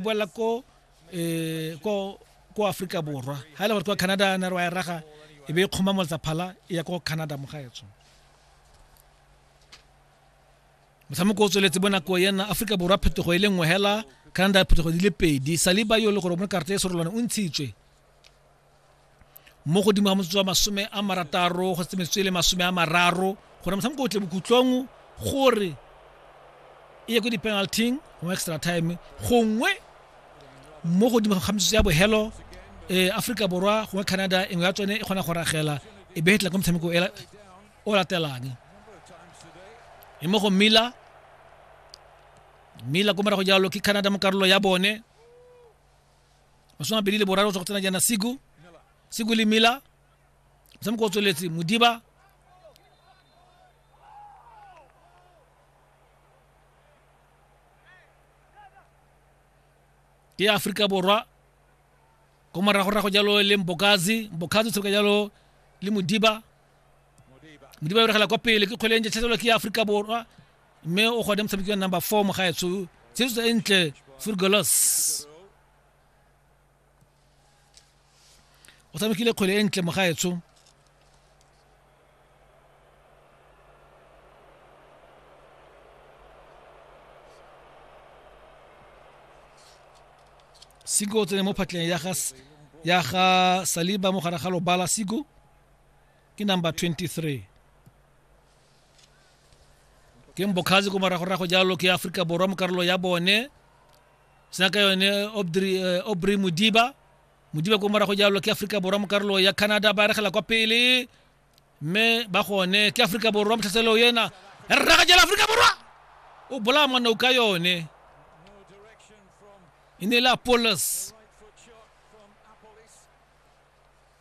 boela ko um ko ko aforika borwa ga e le gore kwa canada na re wa e raga e be e kgoma moletsa phala e ya ko canada mo gaetsho motshameko o tsweletse bonako yena aforika borwa phetogo e le nngwe hela canada phetogo di le pedi saliba yo e le gore o mo karata e serolwane o ntshitswe mo godimo ga motsotso wa masome a marataro go tsemetswe le masome a mararo gore motshameko o tle bokhutlong gore e ye ko di-penalting mo extra time gongwe mo godimo ga metsotso ya bohelo um aforika borwa gongwe canada engwe ya tsone e kgona go ragela e be tla ka motshameko o latelang e mo go mila mila ko morago jalo ke canada mo karolo ya bone masome a pedi le boraro go tswa go tsena jaana siku siku le mila motshameko o tsweletse modiba ke ya aforika borwa ko moragorago jalo le mbokazi mbokazi o tshameka jalo le modiba modiba e regela kwa pele ke kgwele e ntšhatlhelwa ke ya aforika borwa mme o gone motshameki wa number four mo gaetsho tshesetso e ntle furgolos o tshamekile kgwele e ntle mo gaetsho siko o tsene mo phatleng ya ga ya ga saliba mo gare ga lobala siko ke number 23 ke mbokgazi ko moragorago jalo ke aforika borwa mo karolo ya bone sena ka yone obry eh, modiba modiba ko morago jalo ke aforika borwa mo karolo ya canada ba regela kwa pele mme ba gone ke aforika borwa motlhaseleo ena ya re raga jalo aforika borwa o bolaya monna o ka yone e ne e le apolos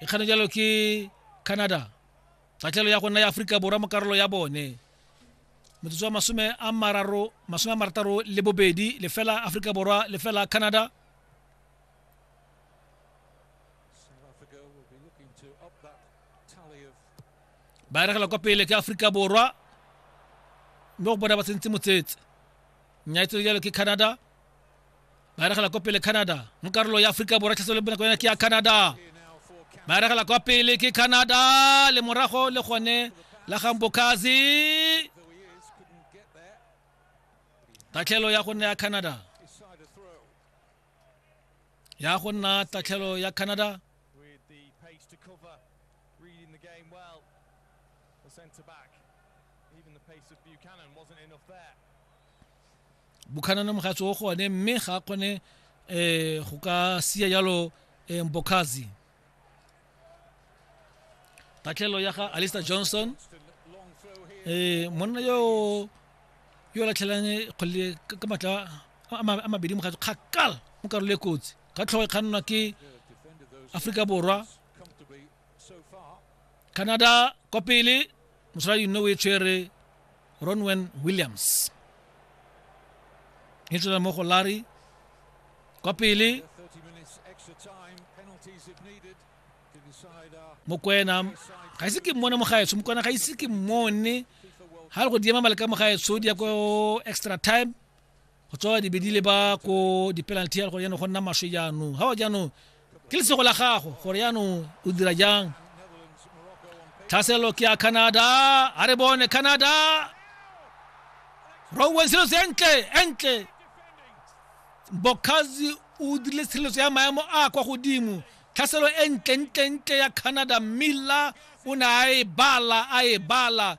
e kgane jalo ke canada tatlhelo ya go nna ya aforika borwa mo karolo ya bone motsotso wa masome a mararo masome a marataro le bobedi lefela aforika borwa lefela canada ba eregela kwa pele ke aforika borwa mme go bona ba tsentse motsetse nyaetselo jalo ke canada ba regela kwa pele canada mo karolo ya aforika borwa tlhaso le bonako yone ke ya canada ba regela kwa pele ke canada le morago le gone la gambokazi tatlhelo ya go nna ya canada ya go nna tatlhelo ya canada centre back. Even the pace of Buchanan wasn't enough there. bukhanana mogatsi o go one mme ga a kgone um go ka sia jalo um mbokhazi tatlhelo ya ga alister johnson um monna yo yo latlhelang kgole ka matla a mabedi mogatsi kgakala mo karolo e kotsi ka tlhogo e kgannwa ke aforika borwa canada kwa pele mosaladi nne o e tshwere ronwen williams e tswela mo go larry kwa pele mokwena ga ise ke mmone mogaetsho mokwena ga ise ke mmone ga le go diema maleka mogaetsho di ya ko extra time go tswa dibedi le ba ko di-penalty ya gore jaanong go nna maswe jaanong ga wa jaanong ke lesego la gago gore jaanong o dira jang tlhaselo ke ya canada a re bone canada rowen selo se entle entle bokazi o dirile tshireletso ya maemo a kwa godimo tlhaselo e ntlentle-ntle ya canada milla o ne a e bala a e bala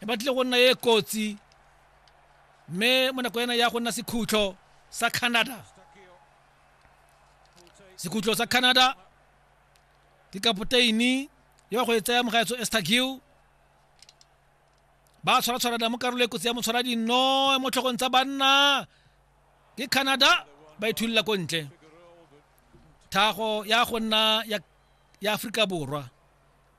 e batlile go nna e kotsi mme mo nako ena ya go nna sekhutlo sa canada sekhutlo sa canada ke kapoteini yo go e tsaya mogaetso estagiu ba tshwaratshwarana mo karolo e kotsi ya motshwara dinno mo tlhogong tsa banna ke canada ba ithulila ko ntle thago ya go nna ya aforika borwa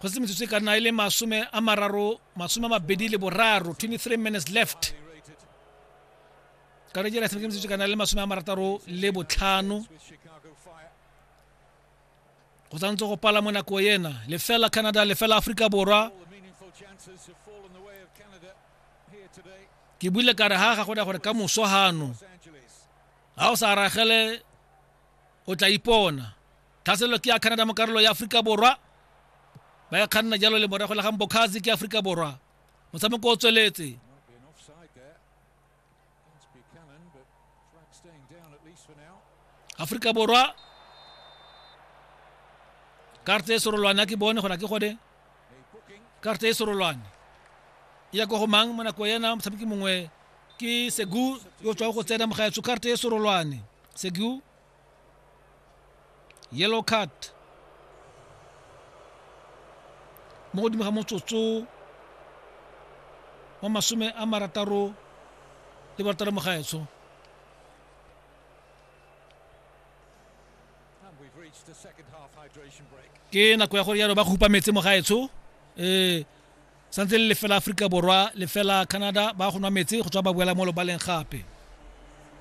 go se metsotso e ka nna e le masome a mararo masome a mabedi le boraro 23 minutes left ka re jela tshameke metsotso e ka nna le masome a marataro le botlhano go tshwanetse go pala mo nako ena lefela canada lefela aforika borwa ke buile kare ga ga go gore ka moso gano ga o sa ragele o tla ipona tlhaselelo ke ya canada mo karolo ya aforika borwa ba e kganna jalo le morago la gang bokhazi ke aforika borwa motshameko o tsweletse aforika borwa karte e serolwane ke bone gona ke gone karte e serolwane e ya ko go mang mo nako ena motshameki mongwe ke segu yo tswa go tsena mogaetsho karte e serolwane segu yellow card mo godimo ga motsotso wa masome a marataro le barataro mo gaetsho ke nako ya gore yalo ba khupa metse mo gaetsho um eh, santse le lefela aforika borwa lefela canada ba go nwa metse go tswa ba boela mo lobaleng gape